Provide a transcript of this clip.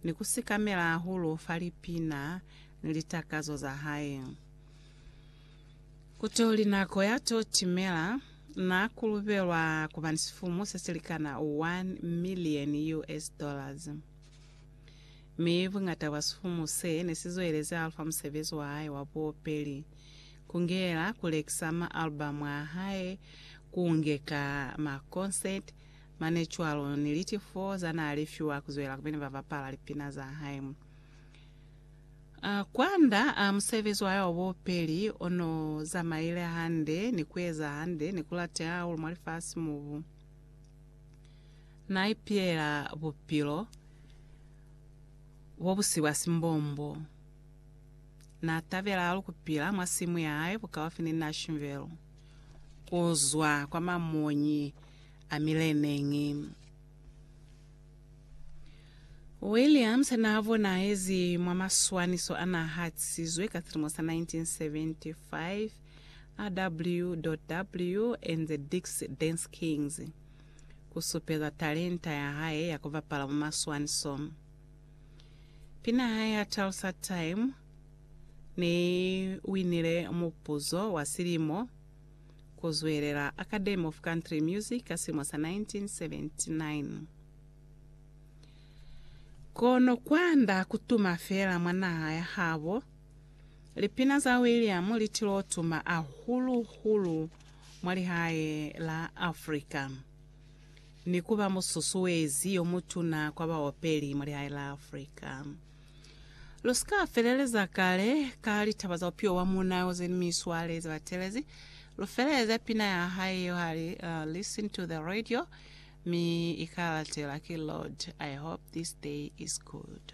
ni ku sikamela hahulu fa lipina ni litakazo za hae. Ku to li nako ya to timela. Na kulubelwa ku ba ni sifumu se si likana one million US dollars. Mi buñata bwa sifumu se ne si zwelezi hahulu fa musebezi wa hae wa buopeli, ku ngeyela ku lekisa ma-album a hae, ku ngeka makonseti, Mane cwalo ni liti fo za naa li fiwa ku zwela kupili ba bapala lipina za hae. Kwanda musebezi wa hae wa bupeli o no zamaile hande ni ku eza hande ni ku lateha hahulu mwa lifasi mo bu na ipilela bupilo bo bu si bwa simbombo. Na tabela hahulu ku pila mwa simu ya hae bukaufi ni Nashville. Ku zwa kwa mamonyi a mileneñi. Williams n'a bonahezi mwa maswaniso a n'a hatisizwe ka silimo sa 1975, RW. and the Dix Dance Kings, ku supeza talenta ya hae ya ku bapala mwa maswaniso. Pina hae ya Tales at Time ne i winile mupuzo wa silimo ku zwelela Academy of Country Music ka silimo sa 1979. Kono kwanda ku tuma feela mwa naha ya habo, lipina za William li til'o tuma ahulu-hulu mwa lihae la Africa, ni ku ba mususuezi yo mutuna kwa baopeli mwa lihae la Africa. Lu si ka feleleza kale ka litaba za bupilo bwa muuna yo ze ni miswale ze ba telezi. Lu feleleza pina ya hae yeo ha li, uh, Listen to the Radio, mi i ka latela ki Lord, I Hope This Day Is Good.